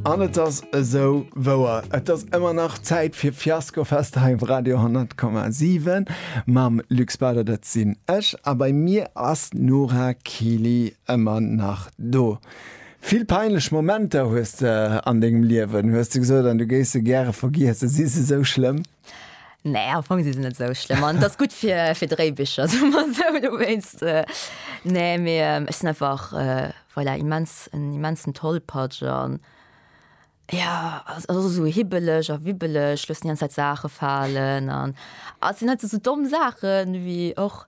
An et ass esou wouer, et ass ëmmer nach Zäit fir Fiaskofest hei op Radio 10,7 mam Luc Bader, dat sinn ech, a bei mir ass d'Nora Kili ëmmer nach do. Vill peinlech Momenter hues de an dengem Liewen, hues de gesot, an du géifs se gäre vergiesse. Si se esou schlëmm? Nee am Fong si se net esou schlëmm an dat ass gutt fir fir Dréibicher soe mer esou dowéinst. Nee mee ech sinn einfach voilà immens en immensen Tollpatsch an jo ass ass och esou hibbeleg a wibbeleg, loossen déi ganz Zäit Saache falen an a sinn net esou domm Saachen wéi och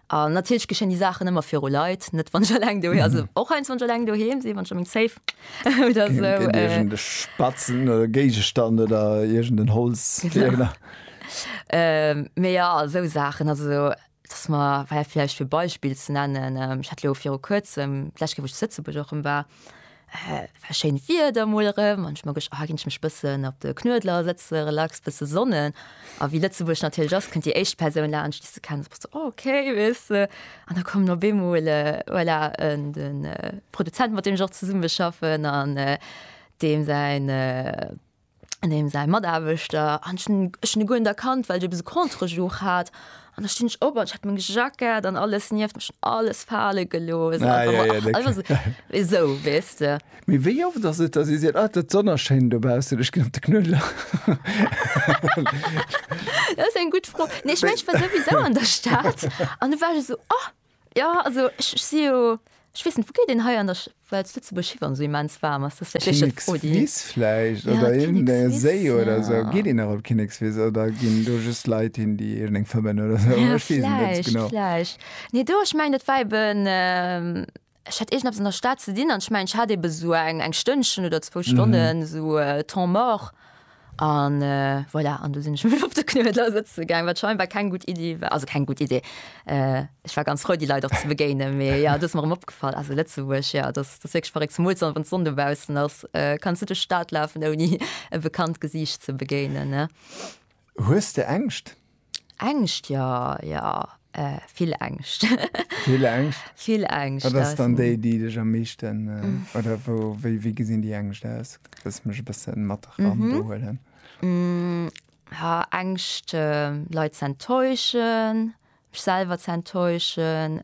An natierlech geschéien déi Saachen ëmmer viru Leit, net wann ech eleng doheem, also och heiansdo wann ech eleng doheem sinn, wann ech a meng Safe oder esou. Gëtt iergend e Spatzen oder e Géigestand oder iergend en Holzfiereler. Mee jo, esou Saachen, also dass mer, well vläicht fir e Beispill ze nennen, ech hat elo viru Kuerzem, d'lescht Kéier wou ech zu Lëtzebuerg och rëm war, Et war schéint Wieder emol erëm an ech mer gecht, ah ginn ech mech bëssen op de Knuedler sëtze, relax, bësse sonnen. A wéi Lëtzebuerg natierlech ass, kënnt déi éischt Persoun laanscht, déi s de kenns, a s de, oh okay, weess de. An da kommen op eemol, voilà, de Produzent, mat deem ech och zesummeschaffen an deem säin, an deem säi Mataarbechter an ech hunn e guer net erkannt, well de bis e Contre-jour hat an da stinn ech op an ech hat meng Jackett an alles nieft mech an alles fale gelooss. Ah, ja, ja, dat also, esou weess de. Mee wéi oft ass et, datt ee seet, ah, dat d'Sonn ass schéin dobaussen, ech ginn op de Knuedler? Dat ass eng gutt Fro. Nee, ech mengen, ech war souwisou an der Stad an du war ech esou, oh. Jo also ech si jo, ech weess net wou geet een hei an der, well zu Lëtzebuerg Schi wann esou immens waarm ass, dat ass vläicht éischter d'Fro déi. Kinnekswiss vläicht oder iergend e Séi oder esou. Geet een nach op Kinnekswiss oder ginn do just Leit hin déi iergend eng fëmmen oder esou, ech weess et net genau. Vläicht, vläicht. Nee do, ech mengen dat war eben. Ech hat iergendepes an der Stad ze dinn an ech mengen, ech hat ebe sou eng Stënnchen oder zwou Stonnen esou temps mort an voilà. An du sinn ech mech op de Knuedler sëtze gaang, wat scheinbar keng gutt Iddi war. Also keng gutt Iddi, ech war ganz frou, déi Leit och ze begéinen. Mee jo, et ass mer erëm opgefall, also Lëtzebuerg, jo, et ass wierklech verréckt. Zemools dann, wann d'Sonn dobaussen ass, kanns net duerch d'Stad lafen, ouni e bekannt Gesiicht ze begéinen. Hues de Ängscht? Ängscht jo, jo, vill Ängscht. Vill Ängscht? Vill Ängscht. Wat ass dann déi, déi dech am meeschten, oder wou, wéi, wéi gesinn déi Ängscht aus? Dass ech mech e bësse mat eran do huelen. Ängscht, Leit ze enttäuschen, mech selwer ze enttäuschen,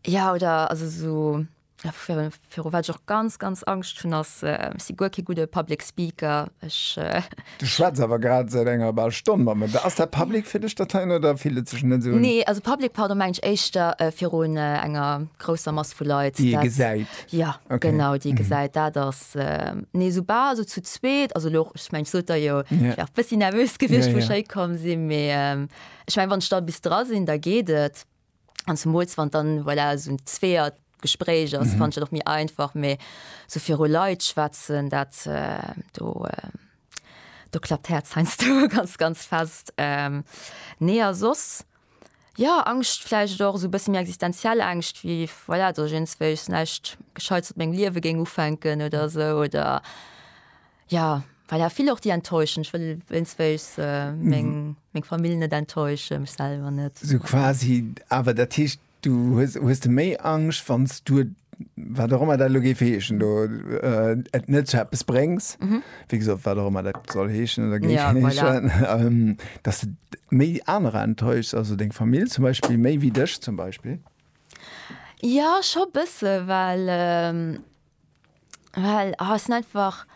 jo, oder also esou Viru wat ech och ganz ganz Angscht hunn ass, ech si guer kee gudde Public Speaker, ech. Du schwätz awer grad säit enger bal Stonn mat mer. Ass dat public fir dech dat heien oder fillt et sech net esou un? Nee, also public, pardon, mengen ech éischter virun enger grousser Mass vu Leit. Déi ee gesäit. Jo, genau, déi ee gesäit. Dat ass, nee, soubal esou zu zweet, also elo, ech mengen, ech sot der jo, ech war e bëssi nervös gewiescht wou ech héikomm sinn, mee ech mengen, wann ech da bis dra sinn, da geet et. an zum Mols wann dann voilà, so ein zweert Gespräch ass mhm. fand doch mir einfach méi so fir Leiit schwätzen dat äh, do äh, do klappt herz heinsst du ganz ganz fest ähm, nee sos ja angst fleisch doch so bis mir existenziell angst wie voilà, du jens welch nächt gescheit meng liewe ging ufänken oder so oder Ja, well ja vill och déi enttäuschen. Ech wëll wéinstwéigs meng, meng Famill net enttäuschen, mech selwer net. Sou quasi, awer dat heescht, du hues, hues de méi Angscht, wann s du et, wat och ëmmer dat elo géif heeschen do, et net zu eppes bréngs, wéi gesot, wat och ëmmer dat soll heeschen oder géif heeschen, dass de méi anerer enttäuschs, also deng Famill zum Beispill méi wéi dech zum Beispill? Jo, scho bësse, well Well ha sinn einfach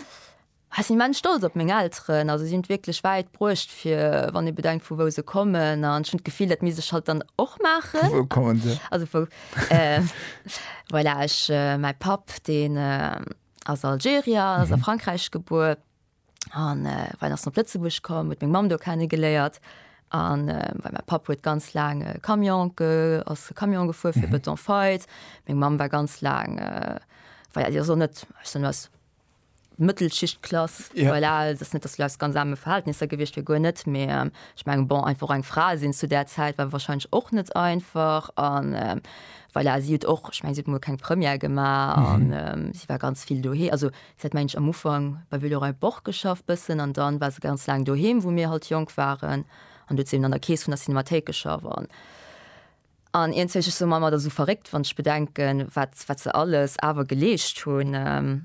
ha sinn immens stolz op meng Elteren. Also si hunn et wierklech wäit bruecht fir, wann ee bedenkt vu wou se kommen. An ech hunn d'Gefill, dat misst ech halt dann och maachen. Vu wou kommen se? Also vu voilà ech mäi Papp deen ass Algerier, ass a Frankräich gebuer, an äh, wann ass op Lëtzebusch kom, huet meng Mam do kennen geléiert an äh, weil mein Pap huet ganz lang äh, Camion ge, ass Camion gefuer fir mhm. Beton feit. Meng Mam war ganz lang äh, war ja, so net was Mëttelschichtklass ja. voilà, das net das Leis ganz same Verhältnisse gewicht fir go net mé ähm, ich mein, bon einfach eng Fra sinn zu der Zeit war wahrscheinlich och net einfach an äh, weil er sieht och ich mein, sieht nur kein Premier gemacht mhm. und, ähm, sie war ganz viel dohe also Se hat mensch am Ufank bei Villeroy Boch geschafft bëssen an dann war se ganz laang doheem wou mir halt jonk waren an do huet se eben an der Kees vun der Cinemathéik geschafft an an iergenzwéi ech soen mer ëmmer dat ass esou verréckt wann ech bedenken wat wat se alles awer geleescht hunn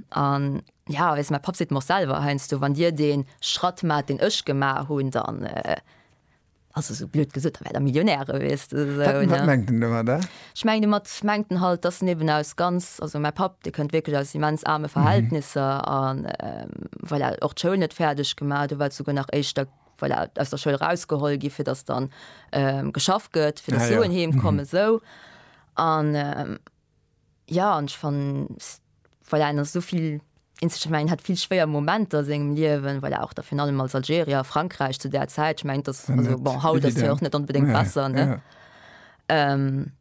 an ja weess mäi Papp seet mer och selwer heiansdo wann dir dee Schratt maacht deen ech gemaach hunn dann Also sou blöd gesot, da wär der Millionär gewiesst oder sou, ne? Wat mengt en domadder? Ech mengen domat mengt en halt, dass en eben aus ganz, also mäi Papp, dee kënnt wierklech aus immens aarme Verhältnisser a voilà, och d'Schoul net fäerdeg gemaach huet, do war et souguer nach éischter, voilà, aus der Schoul erausgeholl gi fir dass dann geschafft gëtt, fir dass Suen heemkommen, sou. An. Ja an ech fannen voilà en ass esou vill Instrumenten, en hat vill schwéier Momenter a sengem Liewen, voilà och da virun allem als Algerier a Frankräich zu där Zäit, ech mengen dass War also net bon haut ass hie evident. och net onbedéngt Nee, besser ne. ja. Ehm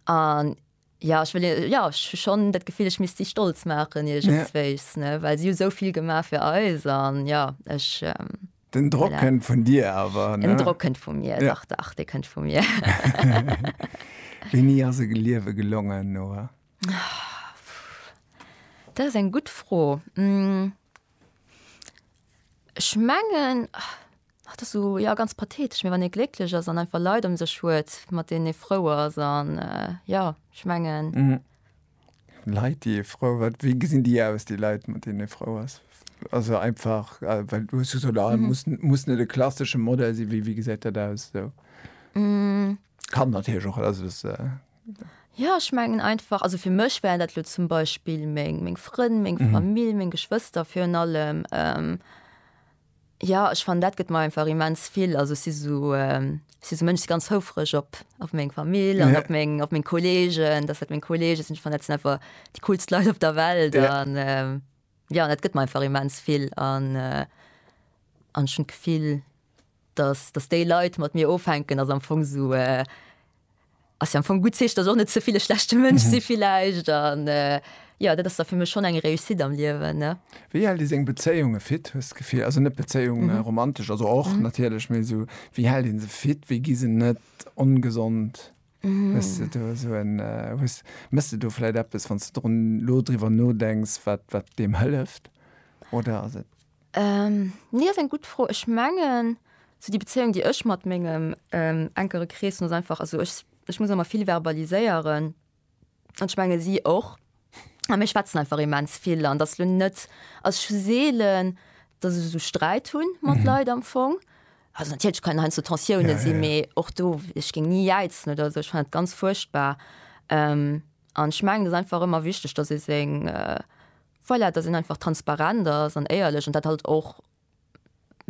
an ja ech wëll hie ja ech hu schonn dat Gefill ech misst si stolz maachen Ja. iergendswéis ne well si hu esou vill gemaach fir eis an ja ech ehm. Den Drock kënnt vun dir awer. Den Drock kënnt vu mir ja. dach, dach dee kënnt vu mir. Wéini ass e Geliewe gelongen, Noa? Dat ass eng gutt Fro. Ech mengen, och dat ass esou jo ganz pathetesch, mee wann ee glécklech ass an einfach Leit ëm sech huet, mat deenen ee frou ass an jo, ech mengen. Leit déi ee frou, wat wéi gesinn déi aus déi Leit mat deenen ee frou ass? Also einfach äh, well du hues jo so da mhm. muss, muss net de klassische Modell si wéi wie gesäit dat aus so. Mm. Kann natürlich och also das, äh, Ja ich mengen einfach also fir mech wären dat lo zum Beispiel meng meng Frënn, meng mhm. Famill, meng Geschwëster fir an allem. Ähm, Jo ech fannen dat gëtt mer einfach immens vill, also ech si sou ech si sou Mënsch si ganz houfreg op op meng Famill an op meng op meng Kolleegen, dass dat meng Kollege sinn. Ech fannen dat sinn einfach déi coolst Leit op der Welt an jo an dat gëtt mer einfach immens vill an an ech hunn d'Gefill, dass dass déi Leit mat mir ofhänken, ass am Fong sou. Ass jo am Fong gutt Zeechen, dass och net ze vill e schlechte Mënsch si villäicht an jo, dat ass da fir mech schonn eng Réussite am Liewen, ne. Wéi hält ee seng Bezéiunge fit, hues d'Gefill? Also net Bezéiung romantesch, also och natierlech, mee esou wéi hält ee se fit, wéi gi se net ongesond? Hues de do esou en, hues, méchs de do vläicht eppes, wann s de drun, elo driwwer nodenks, wat, wat deem hëlleft oder ass et Nee ass eng gutt Fro. Ech mengen sou déi Bezéiung déi ech mat mengem enkere Krees hunn ass einfach, also ech ech muss ëmmer vill verbaliséieren an ech menge si och a mir schwätzen einfach immens vill an et ass lo net, also ech hu seelen, datt ech esou Sträit hu mat Leit am Fong. Also natierlech kënnen heiansdo Tensiounen sinn, mee och do, ech géing ni jäizen oder esou, ech fannen et ganz fuerchtbar an ech mengen et ass einfach ëmmer wichteg, datt ee seng Voilà, dass een einfach transparent ass an éierlech an dat halt och,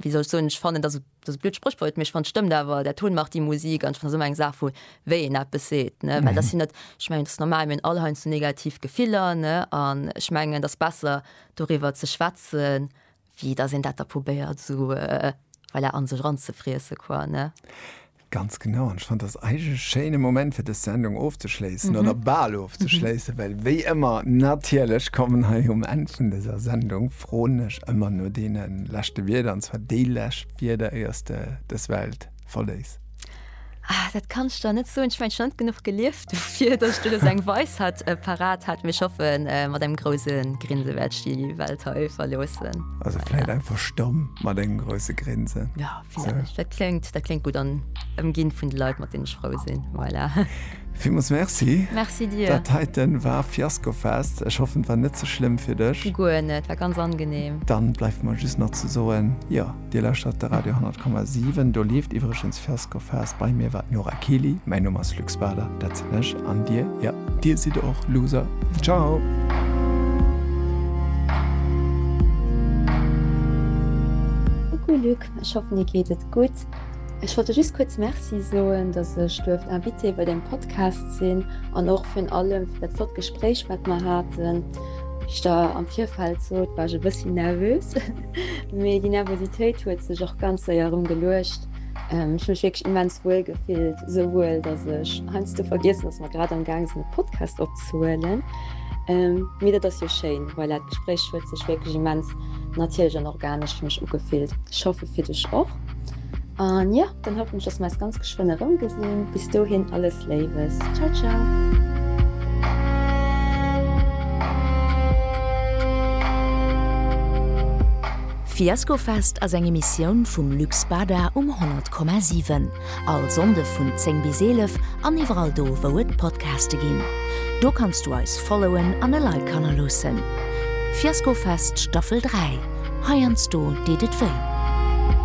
wéi soll ech soen, ech fannen, dass, dat ass e blöd Spréchwort, mee ech fannen, et stëmmt awer, Der Ton macht die Musik an ech fannen, dat ass ëmmer eng Saach vu wéi een eppes seet, ne, well dat sinn net, ech mengen, et ass normal, mir hunn all heiansdo negativ Gefiller, ne, an ech mengen, et ass besser doriwwer ze schwätzen Wéi dass een dat da probéiert esou, voilà, an sech ranzefriessen quoi, ne? Ganz genau, an ech fannt dass eigentlech e schéine Moment fir dës Sendung ofzeschléissen, oder bal ofzeschléissen, well wéi ëmmer natierlech kommen hei um Enn vun dëser Sendung, froen ech ëmmer no deene leschte Wierder, an zwar déi lescht Wierder éiers de dës Welt verléiss? Ah, dat kann ich da net so. Ich mein schon genug gelieft dafür, dass du das eng Weis hat äh, parat hat mir schaffen äh, mat dem großen Grinse werd ich die Welt he verlosen. Also vielleicht ja. einfach stumm mat engem große Grinse. Ja so. dat klingt dat klingt gut an ëmgin vun de Leiit mat den Schrau sinn. Voilà. Vimus Merci. Merci dir. Dat heiten war Fiasko fest. Ech hoffen war net ze so schlimm fir dech. Guer net war ganz angenehm. Dann bleif man just nach ze soen. Ja. Dir lauschtert de Radio 10,7. Do leeft iwwregens First Go Fast. Bei mir war d'Nora Kiely. Mäin Numm ass Luc Spader, dat sinn ech. An Dir? Jo, Dir sidd och Loser. Ciao! Coucou Luc, ech hoffen dir geet et gutt. Ech wollt der just kuerz Merci soen, datt ech duerft Invité bei dengem Podcast sinn an och virun allem fir dat flott Gespréich wat mer haten. Wéi ech der am Virfeld sot, war ech e bëssi nervös. Mee déi Nervositéit huet sech och ganz séier erëm geluecht. Ech mech wierklech immens wuel gefillt, esou wuel, datt ech heiansdo vergiessen, datt mer grad am gaang sinn e Podcast opzehuelen. Mee dat ass jo schéin, voilà, d'Gespréich huet sech wierklech immens natierlech an organesch fir mech ugefillt. Ech hoffe fir dech och. An jo, dann hoffen ech, dass mer eis ganz geschwënn erëm gesinn. Bis dohin alles Léiwes. Ciao ciao. Fiaskofest ass eng Emissioun vum Lux Bada um 100,7. All Sonnde vun 10 bis 11 an iwwerall do wou et Podcaste ginn. Do kanns du eis followen an e Like hannerloossen. Fiaskofest Staffel 3, heiansdo deet et wéi.